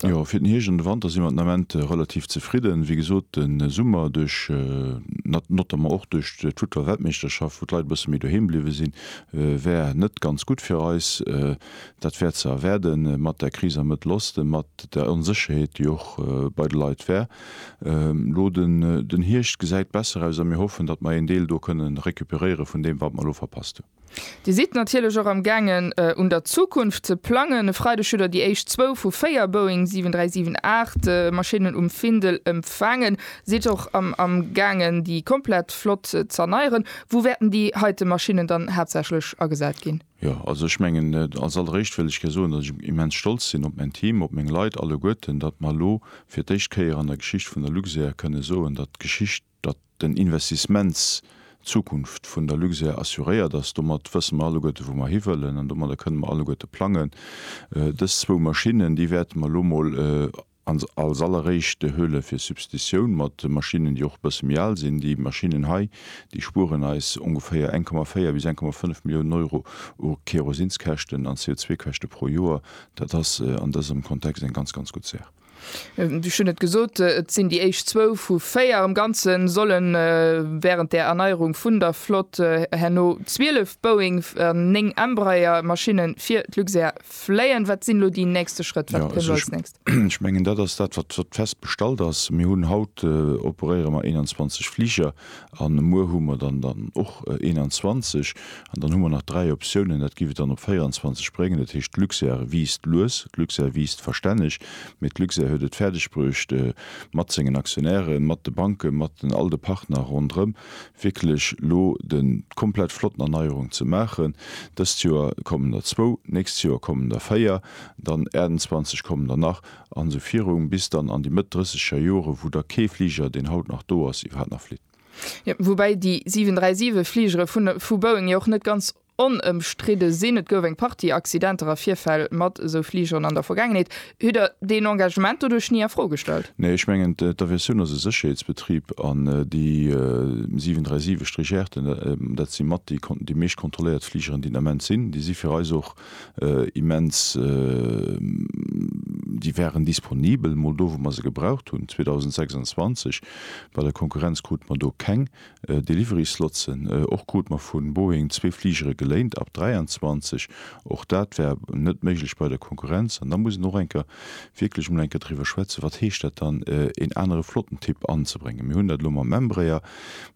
Jo, fir den Hierscht an de Wanter si mer den Ament relativ zefridden. Wéi gesot, de Summer duerch notamment och duerch d'Futtballweltmeeschterschaft, wou d'Leit e bësse méi doheem bliwwe sinn, wär net ganz gutt fir eis. Dat wär ze erwaarden mat der Kris am Mëttel Osten, mat der Onsécherheet, déi och bei de Leit wär. Elo den Hierscht gesäit besser aus a mir hoffen, datt mer een Deel do kënne recuperéiere vun deem, wat mer elo verpasst hunn. Dir sidd natierlech och am gaangen un der Zukunft ze plangen. E Freideg hutt der déi éischt zwou vu véier Boeing 737 Maschinnen um Findel empfaangen. Sidd och am gaangen déi komplett Flott z'erneieren. Wou wäerten déi heite Maschinnen dann haaptsächlech agesat ginn? Jo, also ech mengen, als alleréischt wëll ech gär soen, datt ech immens stolz sinn op mäin Team, op meng Leit alleguerten, datt mer elo fir d'éischt Kéier an der Geschicht vun der Luxair kënne soen, datt d'Geschicht, datt den Investissements d'Zukunft vun der Luxair assuréiert ass, domat wësse mer alleguerte wou mer hiwëllen an domadder kënne mer alleguerte plangen. Dës zwou Maschinnen, déi wäerte mer elo emol als alleréischt huele fir Substitutioun mat Maschinnen, déi och e bësse méi al sinn. Déi Maschinnen hei, déi spueren eis ongeféier 1,4 bis 1,5 Milliounen Euro u Kérosinskäschten an CO2-Käschte pro Joer. Dat ass an dësem Kontext eng ganz, ganz gutt Saach. Ech hunn et gesot, et sinn déi éischt zwou vu véier. Am Ganze solle wärend der Erneierung vun der Flott herno 12 Boeing an 9 Embraer Maschinne fir d'Luxair fléien. Wat sinn elo déi nächste Schrëtt? Wat kënnt als nächst? Ech mengen dat ass dat, wat fest bestallt ass. Mir hunn haut, operéiere mer 21 Fliger. an muer hu mer dann dann och 21 an dann hu mer nach dräi Optiounen, dat giff et dann op 24 bréngen. Dat heescht, d'Luxair wiisst lues, d'Luxair wiisst verstänneg, mee d'Luxair huet et fäerdegbruecht mat sengen Aktionären, mat de Banken, mat den all de Partner ronderëm wierklech lo de komplett flotten Erneierung ze maachen. Dëst Joer kommen der zwou, d'nächst Joer kommen der véier, dann 28 kommen der nach. an esou virung, bis dann an déi Mëtt drësseger Jore wou da kee Fliger, deen haut nach do ass, iwwerhaapt nach flitt. Jo, woubäi déi 737 Fligere vun vu Boeing jo och net ganz onëmstridde sinn. Et gouf eng Partie Accidenter a Virfäll mat esou Fligeren an der Vergaangenheet. Hutt Der deen Engagement doduerch ni a Fro gestallt? Nee, ech mengen d'Aviatioun ass e Sécherheetsbetrib an déi 737 Légère'ten, dat si mat déi déi meescht kontrolléiert Fligeren, déi den Ament sinn, déi si fir eis och immens, déi waren disponibel mol do wou mer se gebraucht hunn, 2026. Bei der Konkurrenz krute mer do keng Delivery-Slotsen. Och krute mer vu Boeing zwee Fligere geléint ab 23, och dat war net méiglech bei der Konkurrenz. An da muss een och eng Kéier wierklech mol eng Kéier driwwer schwätzen, wat heescht dat dann, een anere Flottentyp anzebréngen. Mir hunn dat elo mam Embraer,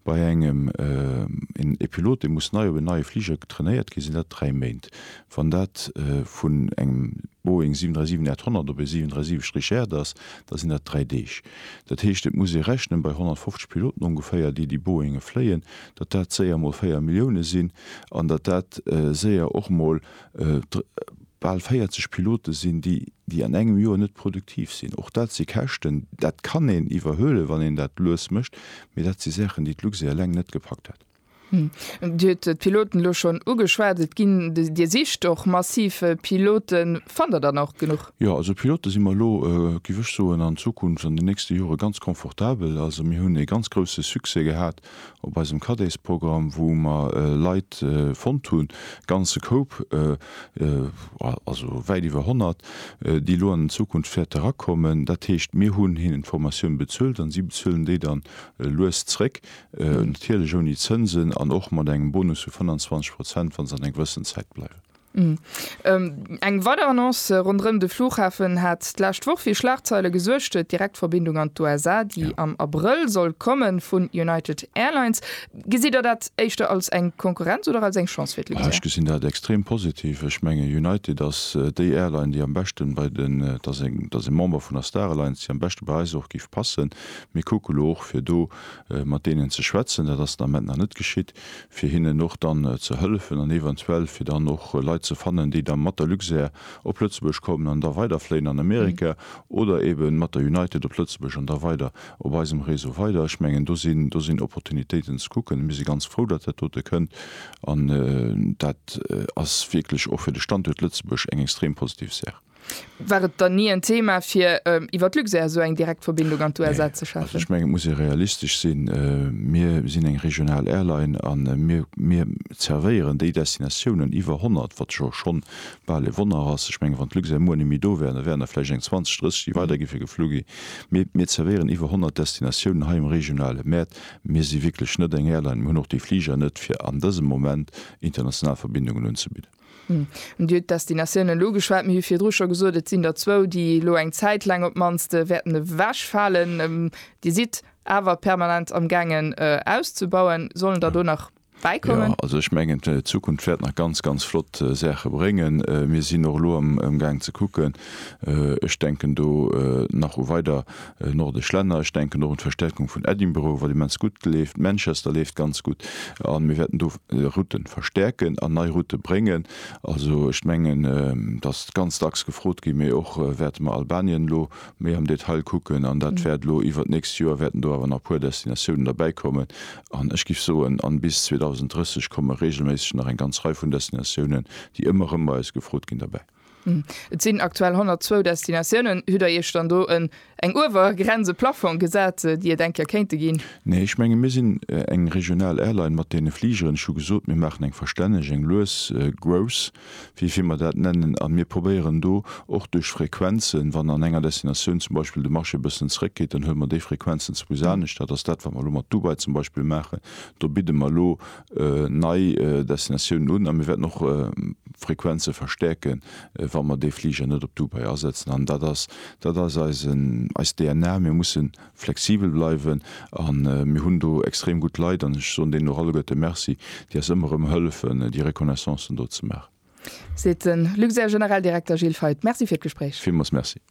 Bei engem en Pilot, dee muss nei op en neie Fliger trainéiert ginn, sinn dat 3 Méint. Wann dat vun engem Boeing 737 800 op e 737 Richert ass, da sinn dat 3 Deeg. Dat heescht, et muss ee rechnen, bei 150 Piloten ongeféier, déi déi Boeingen fléien, datt dat séier mol 4 Millioune sinn an datt dat séier och mol Bal 40 Pilote sinn, déi déi an engem Joer net produktiv sinn. Och dat si Käschten. Dat kann een iwwerhuelen, wann een dat lues mécht, mee dat si Saachen, déi d'Luxair eleng net gepackt hätt. Dir hutt d'Piloten elo schonn ugeschwat. Et ginn, Dir sicht och massiv Piloten. Fannt Der dann och genuch? Jo, also Pilote si mer elo, géif ech soen, an Zukunft, an den nächste Jore ganz confortabel. Also mir hunn ee ganz grouse Succès gehat op eisem Caddésprogramm, wou mer Leit fonnt hunn, e ganze Koup, also wäit iwwer 100, déi elo an Zukunft wäerte erakommen. Dat heescht, mir hunn hinnen d'Formatioun bezuelt an si bezuelen déi dann lues zréck, natierlech ouni Zënsen an och mat engem Bonus vu 25 Prozent, wa se an enger gewëssen Zäit bleiwen. Eng weider Annonce ronderëm de Flughafen hat d'lescht Woch fir Schlagzeile gesuergt, d'Direktverbindung an d'USA, déi am Abrëll soll kommen, vun United Airlines. Gesitt der dat éischter als eng Konkurrenz oder als eng Chance fir d'Luxair? Ech gesinn dat extrem positiv. Ech mengen United ass déi Airline, déi am beschten bei den, et ass eng, et ass e Member vun der Star Alliance, déi am beschte bei eis och géif passen. Mir kucke lo och fir do mat deenen ze schwätzen, dat ass den Ament nach net geschitt. fir hinnen och dann ze hëllefen an eventuell fir dann och Leit ze fannen, déi da mat der Luxair op Lëtzebuerg kommen an da weiderfléien an Amerika oder eeben mat der United op Lëtzebuerg an da weider op eisem Réseau weider. Ech mengen, do sinn, do sinn Opportunitéiten ze kucken. Mir si ganz frou, datt dat dote kënnt an dat ass wierklech och fir de Standuert Lëtzebuerg eng extrem positiv Saach. War et dann ni en Thema fir iwwer Luxair esou eng direkt Verbindung an d'USA ze schafen? Ech mengen, et muss ee realistesch sinn. Mir sinn eng regional Airline a mir zervéieren déi Destinatiounen, iwwer 100, wat jo schonn bal e Wonner ass. Ech mengen, wann d'Luxair muer net méi do wären, da wären der vläicht eng 20, 30, déi weider gi fir geflu gi. Mee mir zervéieren iwwer 100 Destinatiounen hei um regionale Mäert. Mir si wierklech net eng Airline, mir hunn och déi Fliger net, fir an dësem Moment international Verbindungen unzebidden. Dir hutt d'Destinatiounen elo geschwat. Mir hu virdru scho gesot, et sinn der zwou, déi elo eng Zäit laang op d'mannst wäerten ewechfalen. Dir sidd awer permanent amgaangen auszebauen. Sollen der do nach bäikommen? Jo, also ech mengen d'Zukunft wäert nach ganz, ganz flott Saache bréngen. Mir sinn och elo amgaang ze kucken, Ech denken do nach u weider nordesch Länner. Ech denken och un d'Verstärkung vun Edinburgh, wat immens gutt leeft. Manchester leeft ganz gutt. A mir wäerten do Route verstärken an nei Route bréngen. Also ech mengen, datt ganz dacks gefrot ginn, mee och wäerte mer Albanien elo méi am Detail kucken. An dat wäert elo iwwert d'nächst Joer wäerten do awer nach e puer Destinatiounen derbäi kommen. An ech giff soen, an bis 2030 komme regelméisseg nach eng ganz Rei vun Destinatiounen, déi ëmmer erëm bei eis gefrot ginn, derbäi. Et sinn aktuell 102 Destinatiounen. Hutt der Iech dann do en eng Uewergrenz, e Plafong gesat, déi Ier denkt, der kéinte ginn? Nee, ech menge mir sinn eng regional Airline mat deene Fligeren. Ech hu gesot, mir maachen eng verstänneg, eng lues Growth, wéi vir mer dat nennen, a mir probéieren do och duerch Frequenzen, wann an enger Destinatioun zum Beispill de Marché e bëssen zeréckgeet, dann huele mer déi Frequenzen zwousch anescht. Dat ass dat, wat mer elo mat Dubai zum Beispill maachen. Do bidde mer elo nei Destinatiounen un a mir wäerten och Frequenze verstäerke wa mer dee Fliger net op Dubai asetzen. An dat ass dat ass eisen eis DNA. Mir musse flexibel bleiwen a mir hunn do extrem gutt Leit an ech soen deenen och alleguerte de Merci, déi eis ëmmer erëm hëllefen déi Reconnaissancen do ze maachen. Seet de Luxair-Generaldirekter Gilles Feith. Merci fir d'Gespréich. Villmools Merci.